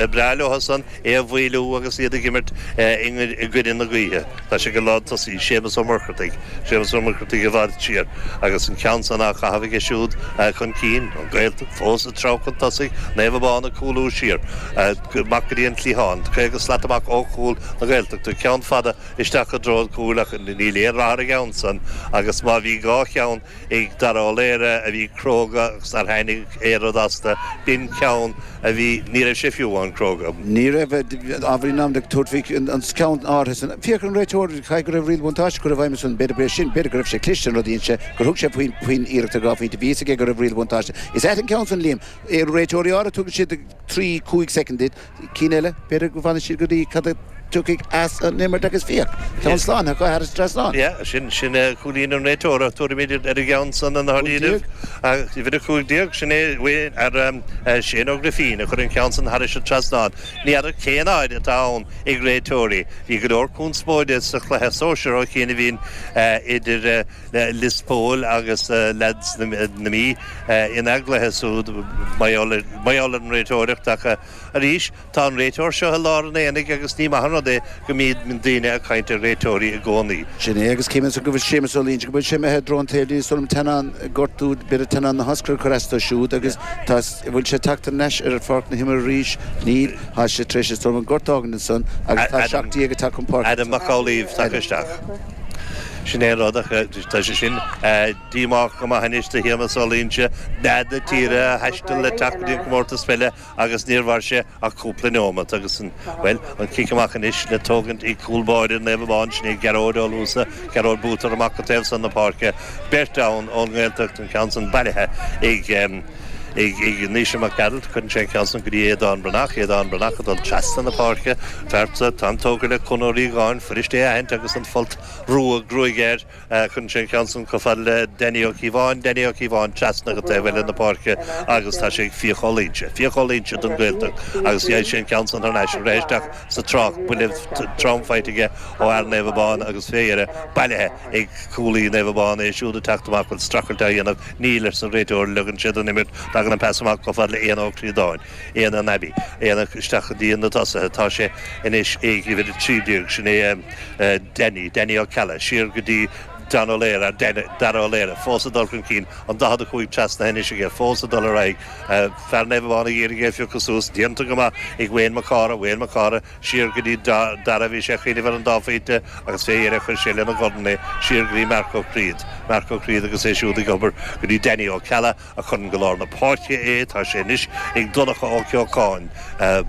Ba bhreá leotha-san é a mhoilliú agus iad ag imirt i gcoinne na gaoithe. Tá sé ag lántosaí, Séamus Ó Muircheartaigh, Séamus Ó Muircheartaigh i bhfad siar agus an ceann san á chaitheamh aige siúd chun cinn, An Ghaeltacht fós ag treabhadh chun tosaigh, Naomh Abán ag cúlú siar, amach go dtí an cliathán, 50 slat amach ó chúl na Gaeltachta, ceann fada isteach i dtreo an chúil ach níl aon rath ar an gceann san agus má bhí dhá cheann ag Dara Ó Laoire a bhí cróga agus nár tháinig aon rud astu, b'in ceann a bhí, ní raibh sé fiú amháin cróga. Ní raibh, ábhairín am, ag tabhairt faoi an ceann áirithe sin. Féach ar an réiteoir, caithfidh go raibh riail bhuntáiste curtha i bhfeidhm ansin, b'fhéidir go raibh sin, b'fhéidir go raibh sé cliste an rud a dhein sé, gur thug sé faoin iarracht ar dhá phointe, bhí a fhios aige go raibh riail bhuntáiste. Is ait an ceann san, Liam. Réiteoirí áirithe tugann siad trí, cúig soicind duit, cinn eile, b'fhéidir go bhfanfaidh siad go dtí cad a thiocfaidh as an imirt agus féach, ceann slán, thar cáith, thar trasnán. Yeah, sin, sin cúilín an réiteora, tabharfaimíd ar an gceann san i ndáiríribh. Uimhir a cúig déag, sin é uaidh ar Shane Ó Grifín a chuir an ceann san thairis an trasnán. Ní fheadar cén aird atá ann ag réiteoirí. Bhí go leor conspóide sa chluiche sóisear ó chianaibh ann idir, Lios Póil agus leads na Mí ina gcluiche siúd, mar gheall ar an réiteoireacht ach arís tá an réiteoir seo i lár an aonaigh agus ní maith an rud é go mbíonn daoine ag caint ar réiteoirí i gcónaí. Sin é, agus an measann tú go bhfuil Séamus Ó Loingsigh, go bhfuil sé imithe i dtreo an taobhlíne, is dóigh liom, teannán, gortú b'fhéidir, teannán na hioscaide ag cur as dó siúd agus tá, bhfuil sé tagtha thar n-ais ar pháirc na himeartha arís? Níl, tá sé tar éis an gort a fhágaint ansan agus tá seacht déag ag teacht chun páirce ansan. Adam Mac Amhlaoibh tagtha isteach. Sin é an rud, ach tá sé sin díomách go maith anois do Shéamas Ó Loingsigh, leath na tíre a thaisteal le teacht go dtí an comórtas peile agus níor mhair sé ach cúpla neomat agus, bhuel, an cic amach anois le tógaint ag cúl báire Naomh Abán, sin é Gearóid Ó Luasa, Gearóid Bútar, amach go taobh san na páirce, beirt ann ón nGaeltacht, an ceann san bailithe ag. ag Naoise Mac Gearailt, cuireann sé an ceann san go dtí Aodán Breathnach, Aodán Breathnach ag dul trasna na páirce, phearsa, tá an tógra le Con Ó Riagáin, fuirist é a aithint agus an folt rua gruaige air, cuireann sé an ceann san chomh fada le Danny Ó Cíobháin, Danny Ó Cíobháin trasna go taobh eile na páirce agus tá sé ag Fiach Ó Loingsigh, Fiach Ó Loingsigh don Ghaeltacht agus gheibh sé an ceann san thar n-ais, rith isteach sa trácht, buille trom faighte aige ó fhear Naomh Abán agus fé dheireadh bailithe ag cúlaí Naomh Abán, é siúd ag teacht amach, bhuel, strachailt á dhéanamh Níl, arsa an réiteoir, ligeann sé don imirt, tagann an pas amach chomh fada le Éanna Ó Críodáin, Éanna an Abbey, Éanna isteach go dtí na tosaithe, tá sé anois ag uimhir 13, sin é Danny, Danny Ó Ceallaigh, siar go dtí Dara Ó Laoire, Dara Ó Laoire, fós ag dul chun cinn, an 45 trasnaithe anois aige, fós ag dul ar aghaidh, fear Naomh Abán ag iarraidh é a phiocadh suas, déanta go maith ag Wayne Mac Cárthaigh, Wayne Mac Cárthaigh, siar go dtí Dara bhí sé ag cuimhneamh ar an dá phointe agus fé dheireadh chuir sé lena dhorn é siar go dtí Marc Ó Criad, Marc Ó Criad agus é siúd ag obair go dtí Danny Ó Ceallaigh a chuireann go lár na páirce é, tá sé anois ag Donncha Ó Ceocháin,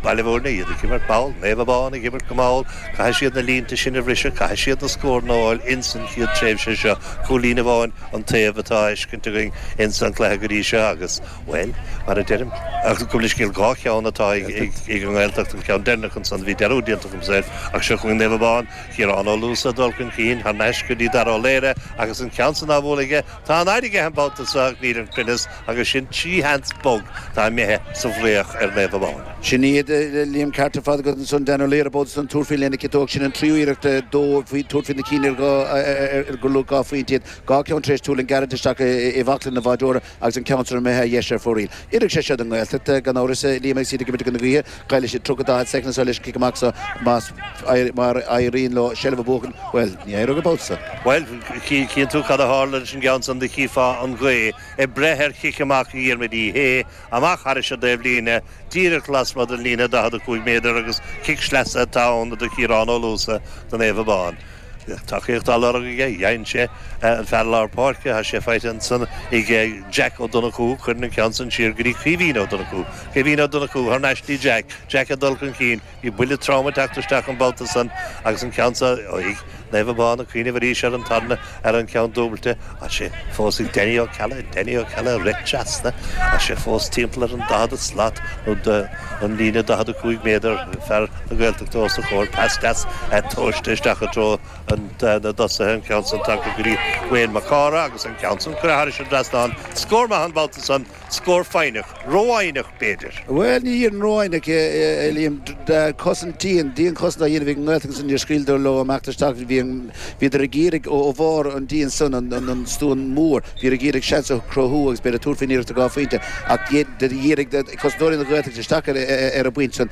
Baile Mhúirne, iad ag imirt mall, Naomh Abán ag imirt go mall, caithfidh siad na línte sin a bhriseadh, caithfidh siad na scóranna a fháil ins an chéad tréimhse seo, cúilín amháin an taobh atá á fheiscint againn ins an cluiche go dtí seo agus. Bhuel, mar a deirim, gabh mo leithscéal, dhá cheann atá ag an nGaeltacht, an ceann deireanach ansan, bhí dearúd déanta agamsa air, ach seo chugainn Naomh Abán, Ciarán Ó Luasa ag dul chun cinn, thar n-ais go dtí Dara Ó Laoghaire agus an ceann san á bhualadh aige, tá an fhaid aige an babhta so ach níl an cruinneas agus sin trí sheans bog atá imithe sa bhfraoch ar Naomh Abán. Sea, a Liam, an ceart ar fad agat ansan, Dara Ó Laoghaire an babhta san, ag tabhairt fé lena chiotóg sin an tríú iarracht dó, ag tabhairt fé na cinn ar gur luach dhá phointe iad, dhá cheann tar éis tuirlingt gairid isteach i mbaclainn an bháideora. agus an ceann san imithe ar dheis ar fóraoil. Oirfidh sé seo don nGaeltacht, gan amhras, a Liam, agus iad ag imirt i gcoinne na gaoithe. Caillfidh siad tríocha daichead soicind anseo leis an chic amach seo agus má éiríonn leo seilbh a bhuachan, bhuel, níor éirigh an babhta so! Bhuel, tchíonn tú cad a tharla leis an gceann san, do chífeá an ghaoth ag breith ar chic amach Dhiarmaid Uí Shé, amach thairis an dtaobhlíne, díreach lasmuigh den líne 45 méadar agus cic sleasa atá ann do Chiarán Ó Luasa, do Naomh Abán. Bhí tacaíocht á lorg aige, faigheann sé ó fhear lár páirce, tá sé faighte ansan ag Jack Ó Donnchú, cuireann an ceann san siar go dtí Caoimhín Ó Donnchú, Caoimhín Ó Donnchú thar n-ais dtí Jack, Jack ag dul chun cinn, bhí buille trom ag teacht isteach an babhta san agus an ceann san ag Naomh Abán ag cuimhneamh arís ar an tarna, ar an gceann dúbailte, Tá sé fós ag Danny Ó Ceallaigh, Danny Ó Ceallaigh ag teacht trasna, tá sé fós timpeall ar an 40 slat nó an líne 45 méadar, fear na Gaeltachta os a chomhair, pas deas tomhaiste isteach i dtreo na dtosaithe, an ceann san tagtha go dtí Wayne Mac Cárthaigh agus an ceann san curtha thairis an trasnán. Scór maith an babhta san. Scór foighneach, rófhoighneach b'fhéidir. Bhuel, ní déarfainn rófhoighneach, a Liam, cosaint dhian, dianchosaint á dhéanamh ag an nGaeltacht agus níor scaoileadar leo amach tar éis tamaillín, bhí, bhíodar ag iarraidh, ó bharr an D ansan, an stua mór, bhíodar ag iarraidh seans a chruthú agus b'fhéidir tabhairt faoin iarracht de dhá phointe ach d'fhéadfadar, dhírigh cosantóirí na Gaeltachta isteach ar an bpointe san,